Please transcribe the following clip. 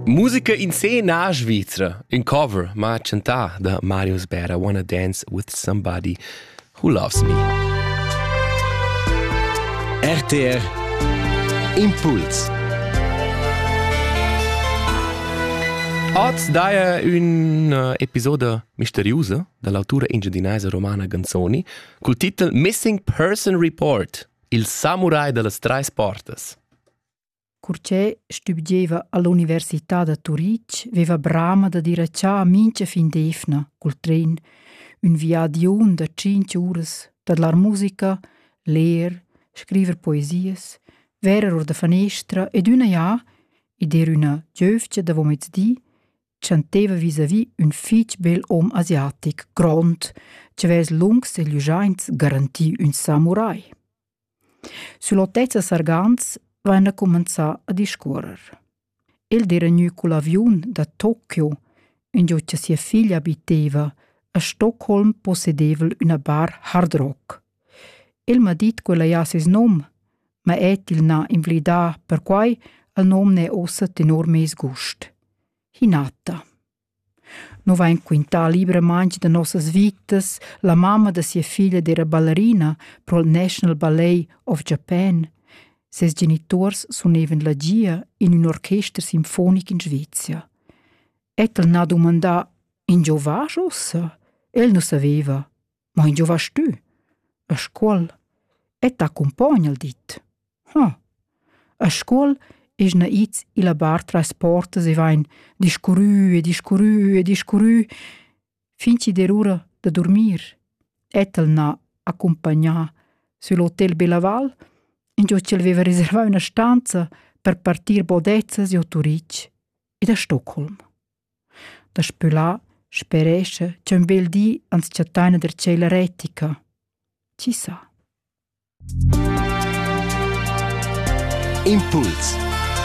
Musica in scena svizra, in cover, ma chantà da Marius Bera, Wanna Dance with Somebody Who Loves Me. RTR Impuls Oz daia un uh, episoda misteriusa dall'autura engiadinaisa romana Ganzoni col titel Missing Person Report, il samurai dallas treis portas. Cur che stübgieva all'università da Turitg veva brama da dir a cha mincha fin d'eivna cul tren ün viadiun da tschinch uras tadlar musica, ler, scriver poesias, verer our da fanestra ed üna jà, id era üna giövgia davomezdi, chanteva vis-à-vis ün fich bel hom asiatic grond chi avess lungs e glüschaints garanti ün samurai. Sün l'otezza Sargans vaina cumanzà a discuorrer. El d'eira gnü cul aviun da Tokio, ingio cha sia figlia abiteva, a Stockholm possedeva'l üna bar hard rock. El m'ha dit ch'ella haja seis nom, ma el til n'ha invlidà perquai cha'l nom n'he uossa tenor meis gust. Hinata No vain quintà libramaing da nossas vitas la mamma da sia figlia d'eira ballerina pro'l National Ballet of Japan. Ses genituors sunevan la gia in ün orchester sinfonic in Svezia. Ed el n'ha dumandà «In giovage ussa?» El nu saveva. Ma in giova stü? A Scuol? E t'accumpogna al dit. Hm. A Scuol esna its illa bar tras portas e vain discurrü e discurrü e discurrü fin chi'd er ura da durmir. Et el n'ha accumpagnà sül Hotel Belaval, ingio ch'el veva reservà üna stanza per partir bodezzas giò Turich ed a Stockholm. Daspö là sperescha ch'ün bel di ans chattaina der tschella retica. Chi sa? Impuls